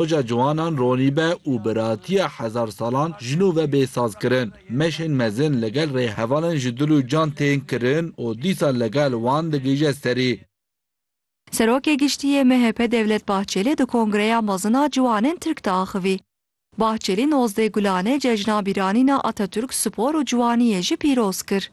Oca ciwanan ronî be û biratiya hezar salan ji nû ve bê sazkirin. Meşên mezin li gel rêhevalan ji dil û can tên kirin û dîsa li gel wan digihije serî. Serokê Giştî yê MHP Devlet Bahçelî di Kongreya Mezin a Ciwanên Tirk de axivî. Bahçelî nozdeh Gulanê Cejna Bîranîna Atatürk Spor û Ciwaniyê jî pîroz kir.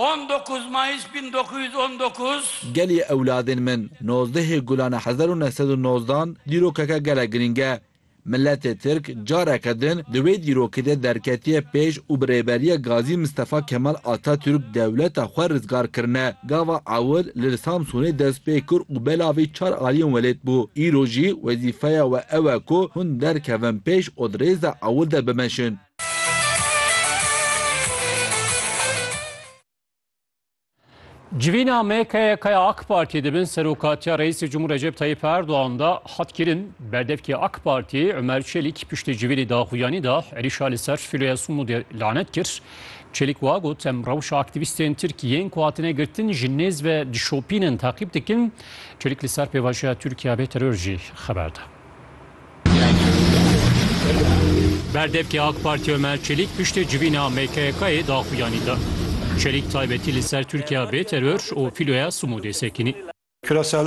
On dokuz Mayis bin dokuz yüz on dokuz. Gelê ewladên min nozdehê Gulana hezar û neh sed û nozdan dîrokeke gelek girîng e. Miletê Tirk careke din di wê dîrokê de derketiye pêş û bi rêberiya Gazî Mistefa Kemal Atatürk dewleta xwe rizgar kirine. Gava ewil li li Samsûnê dest pê kir û bela vî çar aliyên welêt bû. Îro jî wezîfeya we ew e ku hûn derkevin pêş û di rêza ewil de bimeşin. Civîna MKYK'ya AK Partî di bin serokatiya Reîsê Cumhur Recep Tayyip Erdoğan da hat kirin. Berdevkê AK Partî Ömer Çelik piştî civînê daxuyanî da êrîşa li ser Filoya Sumudê lanet kir. Çelik wa got em rewşa aktîvîstên Tirk yên ku hatine girtin ji nêz ve dişopînin, teqîb dikin. Çelik li ser pêvajoya Tirkiya bê teror jî xeber da. Berdevkê AK Partî Omer Çelîk piştê civîna MKYK'ê daxuyanî da. Çelîk taybetî li ser Tirkiya bê teror û fîloya Sumûdê sekinî. Küresel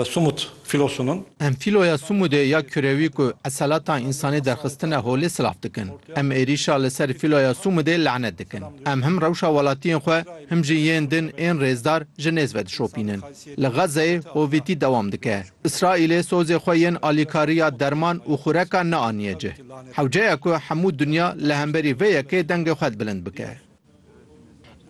Sumut Filosu'nun. Em fîloya Sumûdê ya kurewî ku eselata însanî derxistine holê silav dikin. Em êrîşa li ser fîloya Sumûdê lanet dikin. Em him rewşa welatiyên xwe him jî yên din ên rêzdar ji nêz vedişopînin. Li Xezzeyê hovîtî dewam dike. Îsraîlê sozê xwe yên alîkariya derman û xureka neaniye cih. Hewceya ku hemû dinya li hemberî vê yekê dengê xwe bilind bike.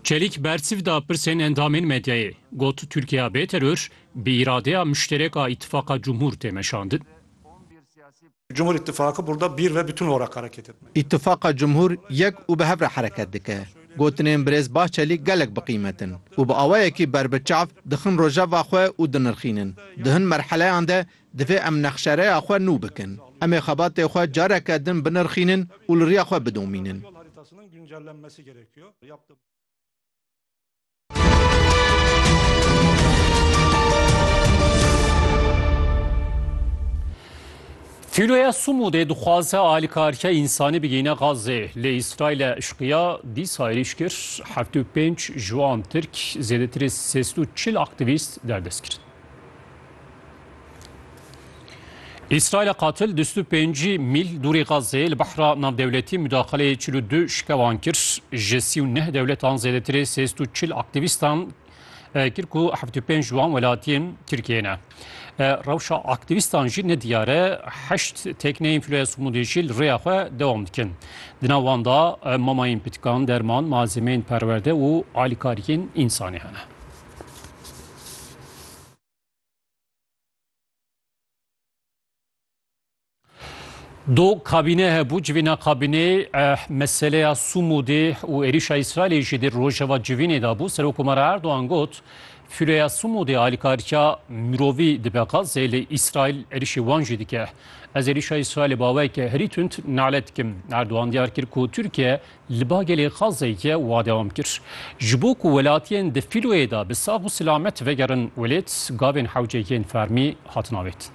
Çelîk bersiv da pirsên endamên medyayê, got, Tirkiya bê teror, bi îradeya muşterek a Îtîfaqa Cumhur tê meşandin. Cumhur Îttifakı burda bir ve bütün olarak hareket etmektedir. Îttifaqa Cumhur yek û bi hev re hereket dike. Gotinên birêz Bahçelî gelek bi qîmet in û bi awayekî ber bi çav dixin rojeva xwe û dinirxînin. Di hin merheleyan de divê em nexşereya xwe nû bikin. Em ê xebatê xwe careke din binirxînin û li riya xwe bidomînin. Filoya Sumudê dixwaze alîkariya însanî bigihîne Gazê. Lê Îsraîlê şqiya dîsa êrîş kir. Heftê û pênc ji wan Tirk, zêdetirê sês û çil aktîvîst derdest kirin. Îsraîla qatil dûst û pênc mîl dûrê Gazê li behra navdewletî mudaxaleyê çil û du şikewan kir. Ji sî û neh dewletan zêdetirê sêst û çil aktîvîstan kir ku heft û pênc ji wan welatiyên Tirkiyeyê ne. Rewşa aktîvîstan jî ne diyar e. Heşt tekneyên Filoya Sumûdê jî li rêya xwe dewam dikin. Di nav wan de mamayên pitikan, derman, malzemeyên perwerde û alîkariyên însanî hene. Do kabîne hebû civîna kabîneyê eh, meseleya Sumûdê û êrîşa Îsraîlê jî dê rojeva civînê de bû. Serokomara Erdogan got, Filoya Sumûdê alîkariya mirovî dibe Gazê lê Îsraîl êrîşê wan jî dike. Ez êrîşa Îsraîlê baweke herî tund nalet dikim. Erdogan diyar kir ku Tirkiye Li Bagelê qazeyeke wa dewam kir. Ji bo ku welatiyên di fîloyê de bi sax û silamet vegerin welêt, gavên hewcek yên fermî hatin avêtin.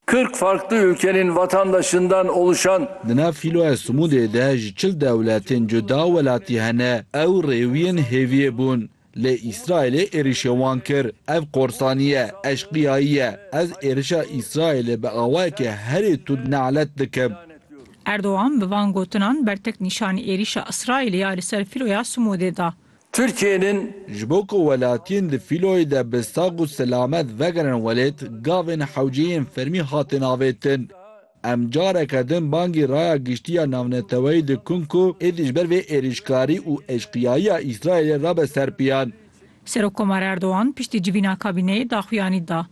Kırk farklı ülkenin vatandaşından oluşan. Di nav fîloya Sumûdê de ji çil dewletên cuda welatî hene. Ew rêwiyên hêviyê bûn. Lê Îsraîlê êrîşê wan kir. Ev qorsanî ye, eşqîyayî ye. Ez êrişa Îsraîlê bi awayekî herî tund ne'let dikim. Erdogan bi van gotinan bertek nîşanî êrîşa Îsraîlê ya li ser Fîloya Sumûdê da. Tirkiyeyên. Ji bo ku welatiyên di Fîloyê de bi sax û selamet vegerin welêt, gavên hewceyiyên fermî hatên avêtin. Em careke din bangê Raya Giştî ya Navneteweyî dikin ku êdî ji ber vê êrîşkarî û eşqîyayiya Îsraîlê rabe ser pêyan. Serokkomar Erdogan piştî civîna kabîneyê daxuyanî da.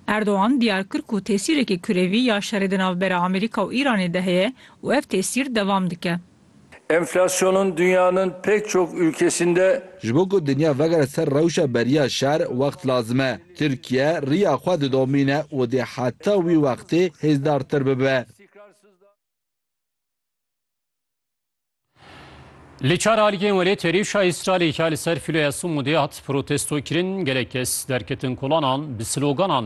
Erdogan diyar kir ku tesîrekî kurevî ya şerê di navbera Amerîka û Îranê de heye û ev tesîr devam dike. Enflasyonun dünyanın pek çok ülkesinde. Ji bo ku dinya vegere ser rewşa beriya şer, wext lazim e. Tirkiye riya xwe didomîne û dê heta wî wextê hêzdartir bibe. Li çar alîgên welêt êrîşa Îsraîlê ya li ser Fîloya Sumûdê hat protestokirin, gelek kes derketin kolanan bi sloganan.